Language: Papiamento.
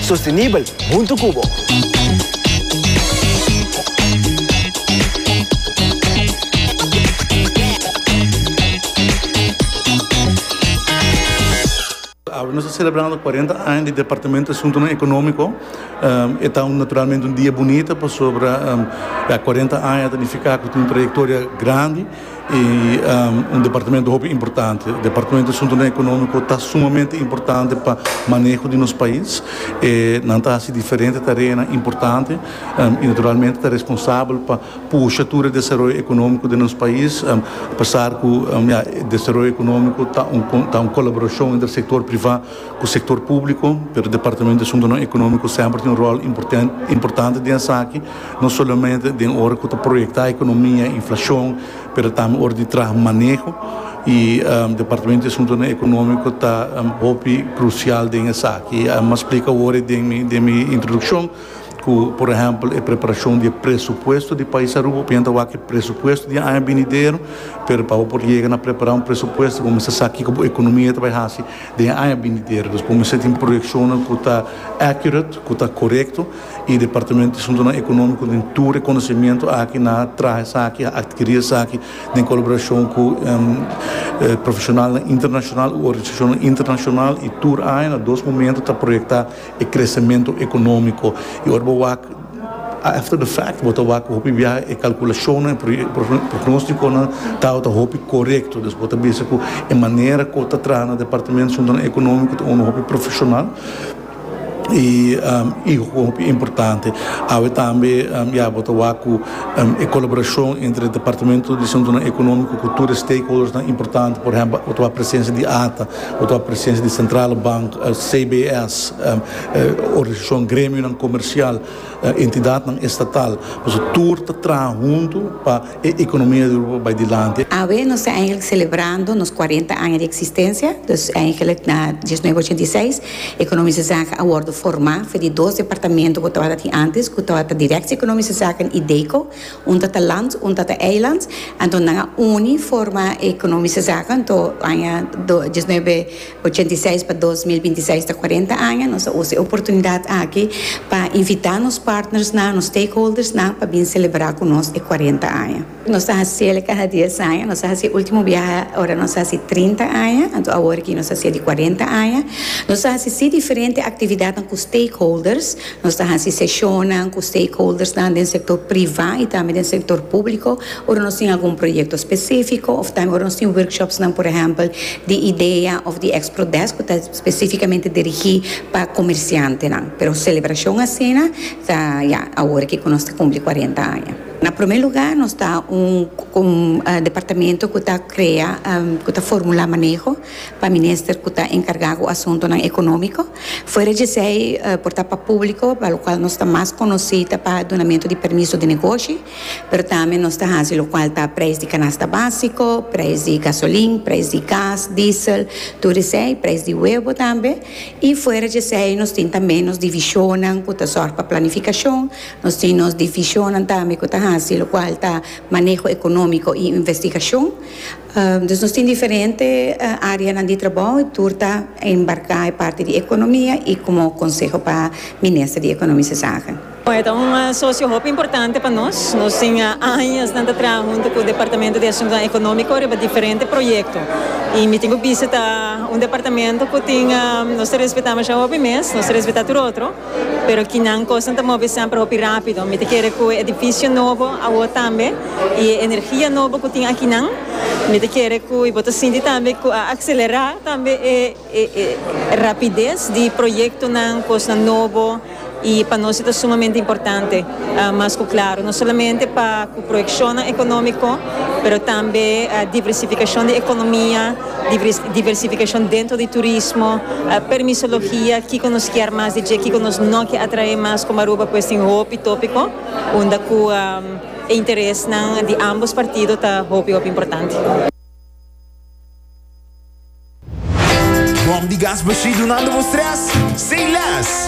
Sostenibel huntu cu bo. Awe nos ta celebrando cuarenta aña di Departamento di Asuntonan Economico. E ta un naturalmente un dia bunita pasobra ya cuarenta aña ta nifica cu tin un trayectoria grandi. y un departamento hopi importante departamento di asuntonan economico ta sumamente importante pa maneho di nos pais e nan ta haci diferente tareanan importante y naturalmente ta responsabel pa pusha tur e desaroyo economico den nos pais apesar cu desaroyo economico ta un colaboracion entre sector priva cu sector publico pero departamento di asuntonan economico semper tin un rol importante den esaki. no solamente den ora cu ta proyecta economia y inflacion, pero tambe ora di traha maneho y Departamento di Asuntonan Economico ta hopi crucial den esaki. M'a splica awor den mi, den mi introduccion cu por ehempel e preparacion di e presupuesto di pais Aruba, opinan ta wak e presupuesto di e aña binidero, pero pa bo por yega na prepara un presupuesto bo mester sa kico bo economia ta bay haci den e aña binidero, dus bo mester tin proyeccionnan cu ta accurate, cu ta corecto. y departamento di Asuntonan Economico den tur reconocimiento aki nan a traha esaki, a adquiri esaki den colaboracion cu profesionalnan internacional u organisacionnan internacional y tur aña na dos momento ta proyecta e crecemento economico y ora bo wak after the fact bo ta wak hopi biaha e calculacionnan y pronosticonan tabata hopi corecto dus bo ta bisa cu e manera cu ta traha na departamento di Asuntonan Economico ta unda hopi profesional. E i hopi importante awe tambe ya bo ta wak cu e colaboracion entre Departamento di Asuntonan Economico cu tur e stakeholdersnan importante, por ehempel bo ta wak presencia di ata, bo ta wak presencia di Centrale Bank, CBS, organisacion gremionan comercial, entidadnan estatal, pasobra tur ta traha hunto pa. E economia di Europa bai dilanti. Awe nos ta eigenlijk celebrando nos cuarenta aña di existencia, dus eigenlijk na dieznuebe ochenta i seis Economische Zaken a wordo forma for di dos departamento cu tabata tin antes cu tabata Directie Economische Zaken y DECO, un ta ta land un ta ta eiland, anto nan a uni forma Economische Zaken anto aña dieznuebe Ochenta i seis pa dos mil binti seis ta kuarenta aña. Nos a usa e oportunidat aki pa invitá nos partnersnan, nos stakeholdersnan pa bin selebrá ku nos e kuarenta aña. Nos ta hasiel kada dies aña. Nos a hasi e último biaha ora nos hasi trinta aña, anto awor aki nos hasiel di kuarenta aña. Nos a hasi si diferente aktividatnan ku stakeholders. Nos ta hasi seshonnan ku stakeholdersnan den sektor privá i tambe den sektor públiko ora nos tin algun proyekto spesífiko òf tambe ora nos tin workshopsnan, por ehèmpel, di idea òf di Expro Desk ku ta spesífikamente dirigí pa komersiantenan. Pero selebrashon asina ta, ya, awor aki ku nos ta kumpli kuarenta aña. Na promé lugá, nos ta un departamento ku ta krea, ku ta formulá maneho. pa minister cu ta encarga cu asuntonan economico. Fuera djesei por ta pa publico, pa locual nos ta mas conoci ta pa dunamento di permiso di negoshi, pero tambe nos ta haci locual ta prijs di canasta basico, prijs di gasolin, prijs di gas, diesel, tur esei, prijs di huevo tambe. Y fuera djesei nos tin tambe nos divisionnan cu ta zorg pa planificacion, nos tin nos divisionnan tambe cu ta haci locual ta maneho economico y investigacion. Dus nos tin diferente areanan di trabou y tur ta embarca e parti di economia y como conseho pa Minister di Economische Zaken. E ta un socio hopi importante pa nos. Nos tin añasnan ta traha hunto cu Departamento di Asuntonan Economico riba diferente proyecto y mi tin cu bisita un departamento cu tin nos ta respeta masha hopi mes, nos ta respeta tur otro. Pero kinan kosnan ta move semper hopi rápido. Mi ta kere ku e edifisio nobo awor tambe i e energia nobo ku tin akinan, mi ta kere ku i bo ta sinti tambe ku a akselerá tambe e rapides di proyektonan, kosnan nobo i pa nos e ta sumamente importante. Mas ku klaru, no solamente pa ku proyekshonnan ekonómiko, pero tambe diversifikashon di ekonomia. diversificacion dentro di turismo, permisologia, kico nos kier mas di dje, kico nos no kier atrae mas como Aruba pues tin hopi topico unda cu e interesnan di ambos partido ta hopi hopi importante. Bom di gas bashí dunando bo stress? Say less!